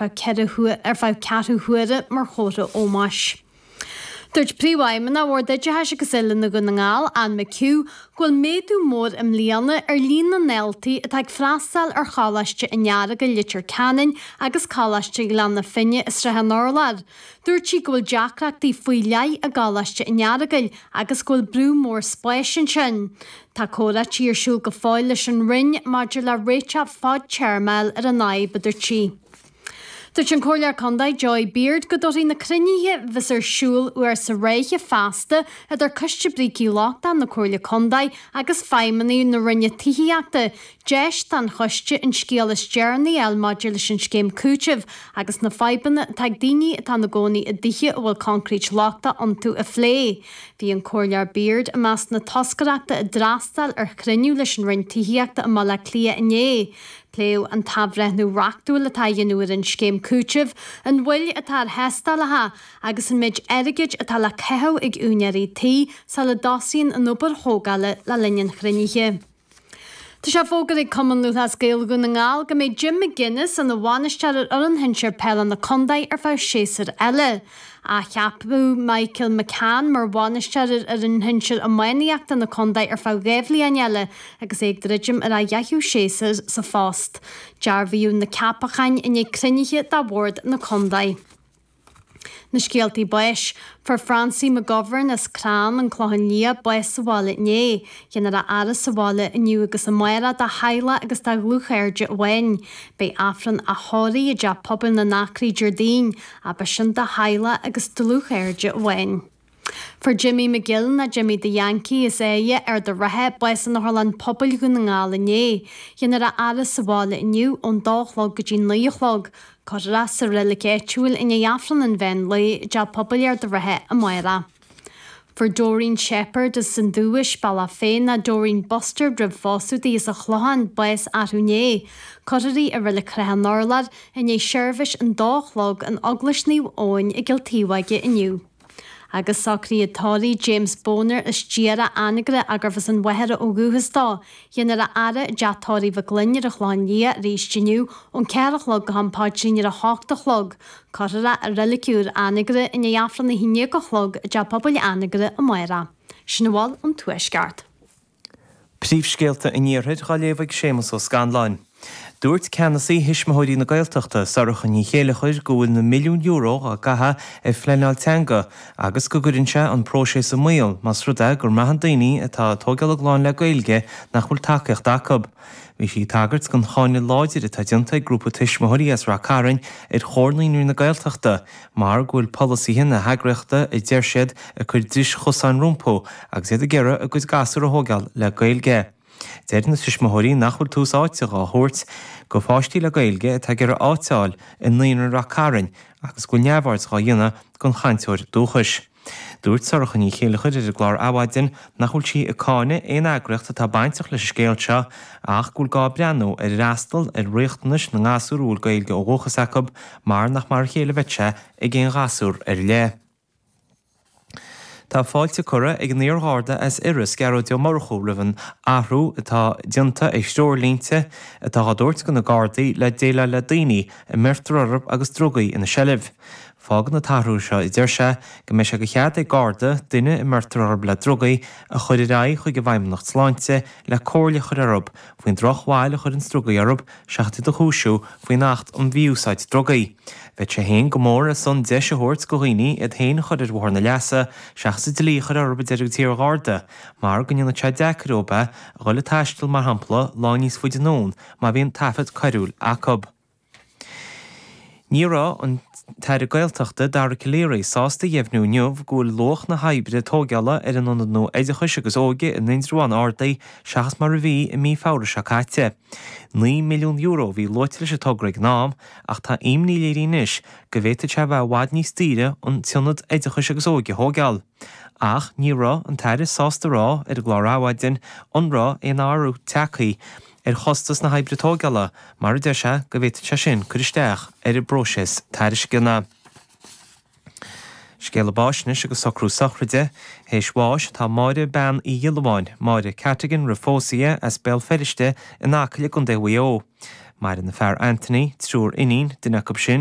ar feadh ceathrú huaire mar chomhartha ómóis. Dúirt Príomhfheidhmeannach Bhord Oideachais agus Oiliúna Dhún na nGall, Anne McHugh, go bhfuil méadú mór i mbliana ar líon na ndaltaí atá ag freastáil ar Choláiste an Earagail, Leitir Ceanainn agus Coláiste Ghleann na Finne i Srath an Urláir. Dúirt sí go bhfuil deacrachtaí faoi leith i gColáiste an Earagail agus go bhfuil brú mór spáis ansin. Tá comhráití ar siúl go fóill leis an Roinn maidir le réiteach fadtéarmach ar an fhadhb, a dúirt sí. Dúirt an Comhairleoir Condae Joy Beard go dtabharfaidh na cruinnithe bheas ar siúl uair sa ráithe feasta idir Coiste Brící Lochtacha na Comhairle Condae agus feidhmeannaigh na Roinne Tithíochta, deis don choiste an scéal is deireanaí a fháil maidir leis an scéim cúitimh agus na fadhbanna atá ag daoine atá ina gcónaí i dtithe a bhfuil coincréit lochtach iontu a phlé. Bhí an Comhairleoir Beard i measc na toscaireachta a d'fhreastail ar chruinniú leis an Roinn Tithíochta i mBaile Átha Cliath inné. Pléadh an t-athbhreithniú reachtúil atá á dhéanamh ar an scéim cúitimh, an mhoill atá ar thástálacha agus an méid airgid atá le caitheamh ag úinéirí tí sula dtosaíonn an obair thógála le linn an chruinnithe. Tá sé fógartha ag Cumann Lúthchleas Gael Dhún na nGall go mbeidh Jim McGuinness ina bhainisteoir ar fhoireann shinsir peile na contae ar feadh séasúr eile. Athcheapadh Michael McCann mar bhainisteoir ar fhoireann shinsir iománaíochta na contae ar feadh dhá bhliain eile agus é ag druidim ar a dheichiú séasúr sa phost. Dearbhaíodh na ceapacháin i ndiaidh cruinnithe de bhord na contae. Na scéaltaí báis, fuair Francie McGovern as Clann an Chlocháin Liath bás sa bhaile inné. Dhéanfar a fhaire sa bhaile inniu agus amárach dá theaghlach agus dá dhlúthchairde amháin. Beidh Aifreann a thórraimh i dTeach Pobail na nAcraí Déardaoin, ach beidh sin, dá theaghlach agus dlúthchairde amháin. Fuair Jimmy McGill nó Jimmy the Yankee as Áighe, Ard an Rátha, bás in Otharlann Pobail Dhún na nGall inné. Dhéanfar a fhaire sa bhaile inniu ón dó a chlog go dtí naoi a chlog. Cuirfear é sa reilig áitiúil i ndiaidh Aifreann an mheán lae i dTeach Pobail Ard an Rátha amárach. Fuair Doreen Shepherd as an Dubhais, Bealach Féich nó Doreen Bustard roimh phósadh di as an Chlochán, bás arú inné. Cuirfear í i reilig Shrath an Urláir i ndiaidh seirbhís an dó a chlog in Eaglais Naomh Eoin i gCill Taobhóige inniu. agus socruithe tórraimh James Bonar as iarthar Anagaire gurbh as an Mhachaire ó dhúchas dó. Dhéanfar a fhaire i dteach tórraimh Mhic Fhloinn ar an Chlochán Liath arís inniu ón ceathair a chlog go ham paidrín ar a hocht a chlog. Cuirfear é i Reilig Úr Anagaire i ndiaidh Aifreann a haon déag a chlog i dTeach Pobail Anagaire amárach. Sin a bhfuil ón Tuaisceart. Príomhscéalta an Iarthair dá léamh ag Séamus Ó Scanláin. Dúirt ceannasaí Thuismitheoirí na Gaeltachta, Sorcha Ní Chéilleachair, go bhfuil na milliúin euro á gcaitheadh ar phleanáil teanga agus go gcuireann sé an próiseas i mbaol más rud é go mbraitheann daoine atá tóigeáil a gclann le Gaeilge nach bhfuil tacaíocht acu. Bhí sí ag tagairt don cháineadh láidir atá déanta ag grúpa tuismitheoirí as Ráth Cairn ar Chomhar Naíonraí na Gaeltachta, mar go bhfuil polasaithe na heagraíochta a deir siad ag cur dris chosáin rompu agus iad ag iarraidh a gcuid gasúr a thóigeáil le Gaeilge. Deir na tuismitheoirí nach bhfuil tús áite dhá thabhairt go pháistí le Gaeilge atá ag iarraidh áit a fháil i Naíonra Ráth Cairn agus go bhfuil neamhaird dhá dhéanamh den chainteoir dúchais. Dúirt Sorcha Ní Chéilleachair ar an gclár Adhmhaidin nach bhfuil sí ag cáineadh aon eagraíocht atá bainteach leis an scéal seo ach go bhfuil gá breathnú ar fhreastal ar riachtanais na ngasúr a bhfuil Gaeilge ó dhúchas acu mar nach mar a chéile a bheadh sé ag aon ghasúr ar leith. Tá fáilte curtha ag an iar-Gharda as Iorras, Gearóid Ó Murchú, roimh an athrú atá déanta ar threoirlínte atá á dtabhairt do na Gardaí le déileáil le daoine a mbeirtear orthu agus drugaí ina seilbh. Fágann an t-athrú seo a deir sé go mbeidh sé de chead ag Garda duine a mbeirtear orthu le drugaí a chuir ar aghaidh chuig an bhFeidhmeannacht Sláinte le comhairle a chuir orthu faoin drochbhail a chuireanns drugaí orthu seachas iad a chúisiú faoin Acht um Mhí-Úsáid Drugaí. Bheadh sé féin go mór ar son deis a thabhairt go dhaoine iad féin a chuir ar bhóthar na leasa seachas an dlí a chuir orthu a deir an t-iar-Gharda mar go ndéanfaidh sé deacair dóibh a dhul ag taisteal mar shampla lá níos faide anonn má bhíonn taifead coiriúil acu. Ní raibh an tAire Gaeltachta, Dara Calleary, sásta a dheimhniú inniu go bhfuil luach na hoibre tógála ar an Ionad nua Oideachais agus Óige in Indreabhán ardaithe seachas mar a bhí i mí Feabhra seo caite. Naoi milliún euro a bhí luaite leis an togra ag an am ach tá imní léirithe anois go bhféadfadh sé a bheith i bhfad níos daoire an tIonad Oideachais agus Óige a thógáil. Ach ní raibh an tAire sásta a rá ar an gclár Adhmhaidin an raibh aon athrú tagtha ar chostas na hoibre tógála mar a deir sé go bhféadfadh sé sin cur isteach ar an bpróiseas tairisceana. Scéala báis anois agus socrú sochraide théis bháis atá Máire Bean Uí Ghiolla Bháin, Máire Cattigan roimh phósadh di as Béal Feirste in Acaill i gContae Mhaigh Eo. Maireann a fear Anthony, triúr iníon, duine acu sin,